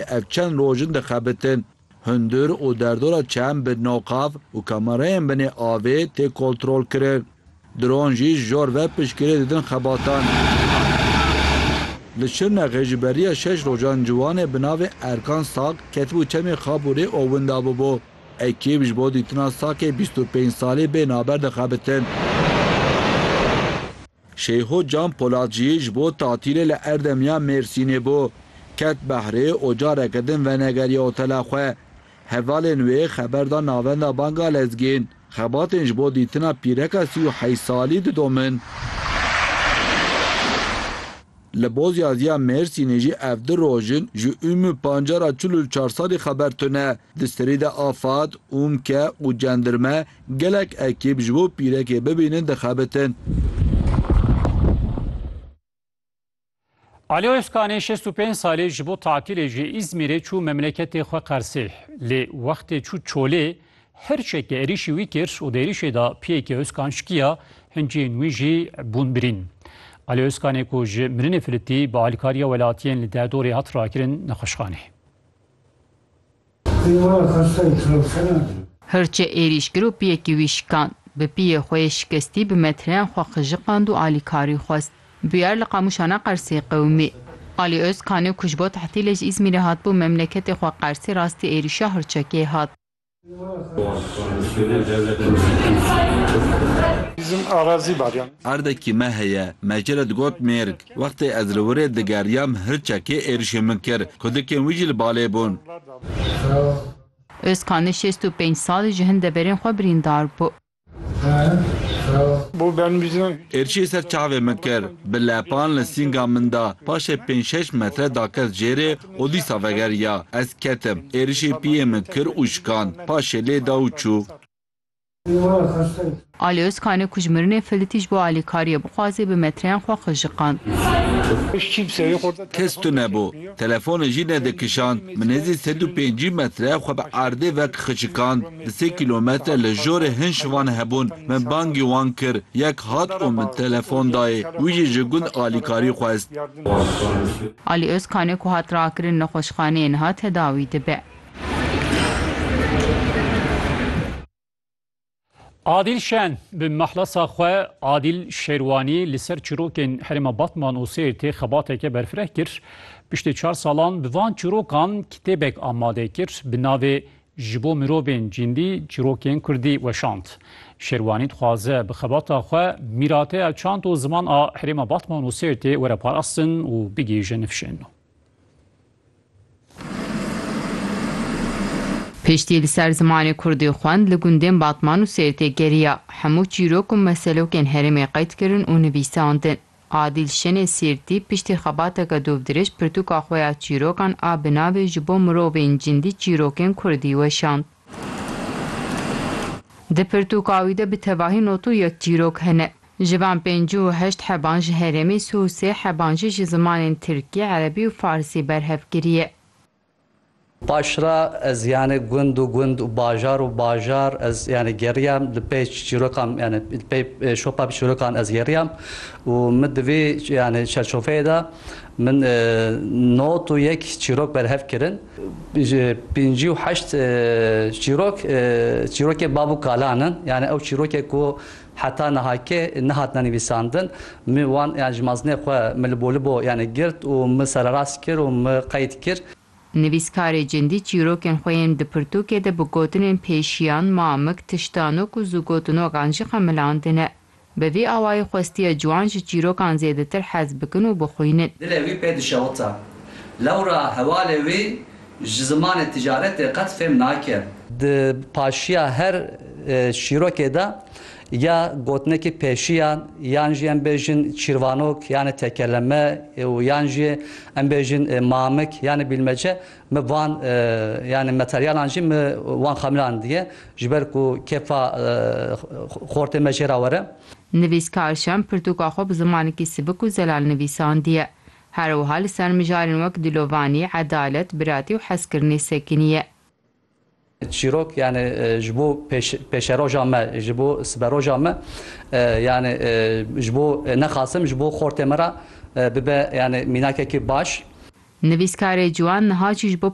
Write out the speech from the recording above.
Ev çend roj in dixebitin. Hundir û derdora çem bi noqav û kamerayên binê avê tê kontrolkirin. Dron jî ji jor ve piştgirê didin xebatan. Li Şirnexê ji beriya şeş rojan ciwanê bi navê Erkan Sak ketibû çemê Xabûrê û winda bûbû. Ekîb ji bo dîtina Sakê bîst û pênc salî bên haber dixebitin. Şeyho Can Polat jî ji bo tatîlê li Erdemiya Mêrsînê bû. Ket behrê û careke din venegeriya otela xwe. Hevalên wê xeber da Navenda Banga Lezgîn. Xebatên ji bo dîtina pîreka sî û heyş salî didomin. Li Bozyaziya Mêrsînê jî ev du roj in ji Ûmû Pancar a çil û çar salî xeber tune. Di serî de afad, ûmke û cendirme Gelek ekîb ji bo pîrekê bibînin dixebitin. Ali Ozkanê şêst û pênc salî ji bo tatilê ji Îzmîrê çû memleketê xwe Qersê. Lê wextê çû Çolê hirçeke êrîşî wî kir û di êrîşê de piyekê Ozkan şkiya, hincên wî jî bûn birîn. Ali Ozkanê ku ji mirinê filitî bi alîkariya welatiyên li Derdorê hat rakirin nexweşxaneyê. Hirçê êrîş kir û piyekî wî şikand. Bi piyê xwe yê şikestî bi metreyan xwe qijiqand û alîkarî xwest. Bûyer li Qamûşan a Qersê qewimî. Alî Ozkanî ku ji bo tehtilê ji Îzmîrê hatibû memleketê xwe Qersê rastî êrîşa Hirçekê hat. Erdekî me heye, me jê re digot mêrg. Wextê ez li wir ê digeriyam hirçekê êrişê min kir. Kudikên wî jî li balê bûn. Ozkan li şêst û pênc sal ji hin deverên xwe birîndar bû. Êrişê ser çavê min kir. Bi lepan li sînga min da. Paşê pênc şeş metre dakez jêrê û dîsa vegeriya. Ez ketim. Êrişê piyê min kir û şikand. Paşê lê da û çû. Ali Ozkane ku ji mirinê filitî ji bo alîkariyê bixwazê bi metreyan xwe qijiqand. Kes tune bû. Telefonê jî nedikişand. Min hêzî sed û pêncî metre xwe bi erdê ve qijiqand. Di sê kîlometre li jorê hin şivan hebûn. Min bangî wan kir. Yek hat û min telefon dayê. Wî jî ji gund alîkarî xwest. Ali Ozkane ku hat rakirin nexweşxaneyê niha tedawî dibe. Adîl Şen bi mehlasa xwe Adîl Şêrwanî li ser çirokên herêma Batman û Sêrtê xebateke berfireh kir. Piştî çar salan bi van çirokan kitêbek amade kir bi navê Ji bo mirovên cîndî çirokên kurdî weşand. Şêrwanî dixwaze bi xebata xwe mîrateya çand û ziman a herêma Batman û Sêrtê were parastin û bigihîje nifşên nû. Piştî li ser zimanê kurdî xwend li gundên Batman û Sêrtê geriya. Hemû çîrok û meselokên herêmê qeyd kirin û nivîsandin. Adîl Şenê Sêrtî piştî xebateke dûvdirêj pirtûka xwe ya çîrokan a bi navê Ji bo mirovên cindî çîrokên kurdî weşand. Di pirtûka wî de bi tevahî not û yek çîrok hene. Ji van pênc û heşt heban ji herêmê sê û sê heban jî ji zimanên tirkî, erebî û farsî berhev kiriye. Paş re ez yanê gund û gund û bajar û bajar ez yanê geriyam li pey çîrokan yanê li pey şopa bi çîrokan ez geriyam û min di vî yanê çerçofeyê de min not û yek çîrok berhev kirin. Ji pêncî û heşt çîrok, çîrokê bav û kalan in. Yanê ew çîrokê ku Heta niha ke nehatine nivîsandin, min wan yan ji mazinê xwe min li bolibo yanê girt û min sererast kir û min qeyd kir. Nivîskarê Cindî çîrokên xwe yên di pirtûkê de bi gotinên pêşiyan, mamik, tiştanok û zûgotinokan jî xemilandine. Bi vî awayî xwestiye ciwan ji çîrokan zêdetir hez bikin û bixwînin. Dilê wî pê dişewita. Lewra hevalê wî Ji zimanê ticaretê qet fêm nake. Di paşiya her çîrokê de ya gotinekî pêşiyan yan jî em bêjin çîrvanok yanê tekeleme û yan jî em bêjin mamik yanê bîlmece min van yanê materyalan jî min wan xemilan diye ji ber ku kêfa xortê me jê re were. Nivîskar Şem pirtûka xwe bi zimanekî sibik û zelal nivîsandiye. Her wiha li ser mijarên wek dilovanî, edalet, biratî û hezkirinê sekinî ye. Çîrok yanî ji bo pêşeroja me, ji bo siberoja me yanî ji bo nexasim ji bo xortê me re bibe yanî mînakekî baş. Nivîskarê ciwan niha jî ji bo